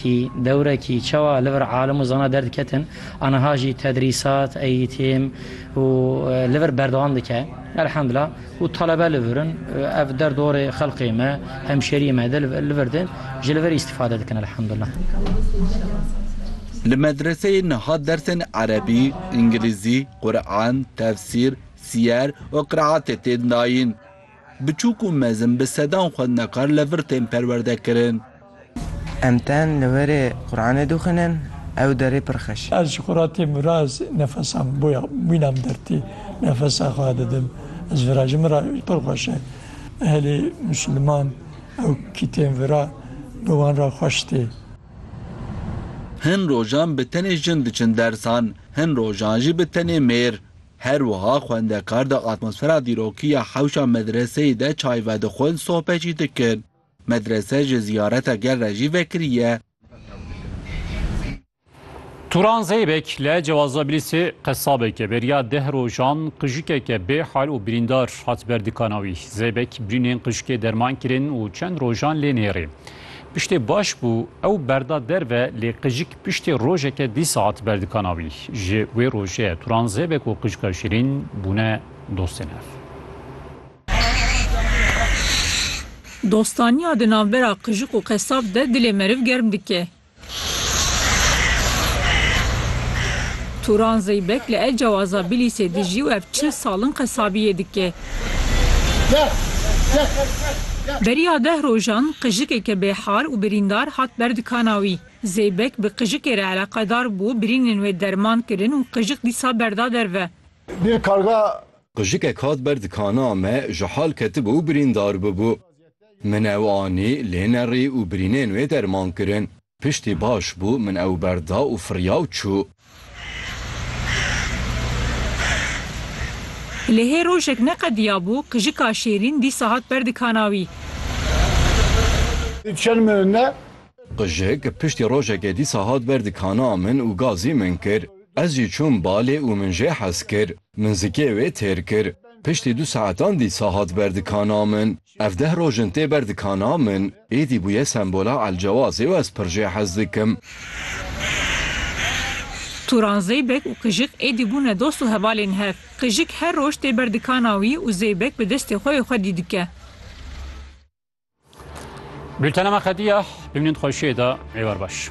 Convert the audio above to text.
Tî dewrekî çawa li vir alim û zana derdiketin, aniha jî tedrîsat, eîtîm û li vir berdewam dike. Elhemdila ku talebe li vir in, ev derdorê xelkê me, hemşeriyê me de li vir din, ji li vir îstîfade dikin elhemdila. Li medreseyê niha dersên erebî, îngilîzî, quran, tefsîr, siyer û qiraatê tên dayîn. Biçûk û mezin bi sedan xwendekar li vir tên perwerde kirin. Em tên li werê Quranê dixwînin, ew derê pir xweş e. Ez ji Quratê miraz nefesan boya mînan dertê nefesa xwe didim. Ez vira ji min re pir xweş e. Ehlê Musulman ew kî tên vira bi wan re xweş tê. Hin rojan bi tenê jin diçin dersan, hin rojan jî bi tenê mêr. Her wiha xwendekar di atmosfera dîrokî ya hewşa medreseyê de çay vedixwin, sohbet jî dikin. Medrese ji ziyareta gel re jî vekiriye. Turan Zeybek li Cewazabîlîsê qesabeke beriya deh rojan qijikeke bê hal û birîndar hat ber dikana wî. Zeybek birînên qijikê derman kirin û çend rojan lê nêrê. Piştê baş bû, ew berda derve lê qijik piştê rojeke dî saet berdikana wî. Ji wê rojê Turan Zêbek û qijika Şirîn bûne dostên hev. Dostaniya di navbera qijik û qesab de dilê meriv germ dike. Turan Zeybek li Elcewaza Bilîsê dijî û ev çil sal in qesabiyê dike. Beriya deh rojan qijikeke bêhal û birîndar hat ber dikana wî. Zeybek bi qijikê re eleqedar bû, birînên wê derman kirin û qijik dîsa berda derve. Qijikek hat ber dikana me, ji hal ketibû û birîndar bûbû. Min ew anî, lênerî û birînên wê derman kirin. Piştî baş bû, min ew berda û firiya û çû. Lê hê rojek neqediyabû, qijika Şêrîn dîsa hat ber dikana wî. Qijik, piştî rojekê dîsa hat ber dikana min û gazî min kir. Ez jî çûm balê û min jê hez kir. Min zikê wê têr kir. Piştî du saetan dîsa hat ber dikana min. Ev deh roj in tê ber dikana min, êdî bûye sembola Elcewazê û ez pir jê hez dikim. Turan Zeybek û Kijik êdî bûne dost û hevalên hev. Kijik her roj tê ber dikana wî û Zeybek bi destê xwe wê xwe dî dike. Bültena me qedîya. Bimînin xweşiyê de. Êwar baş.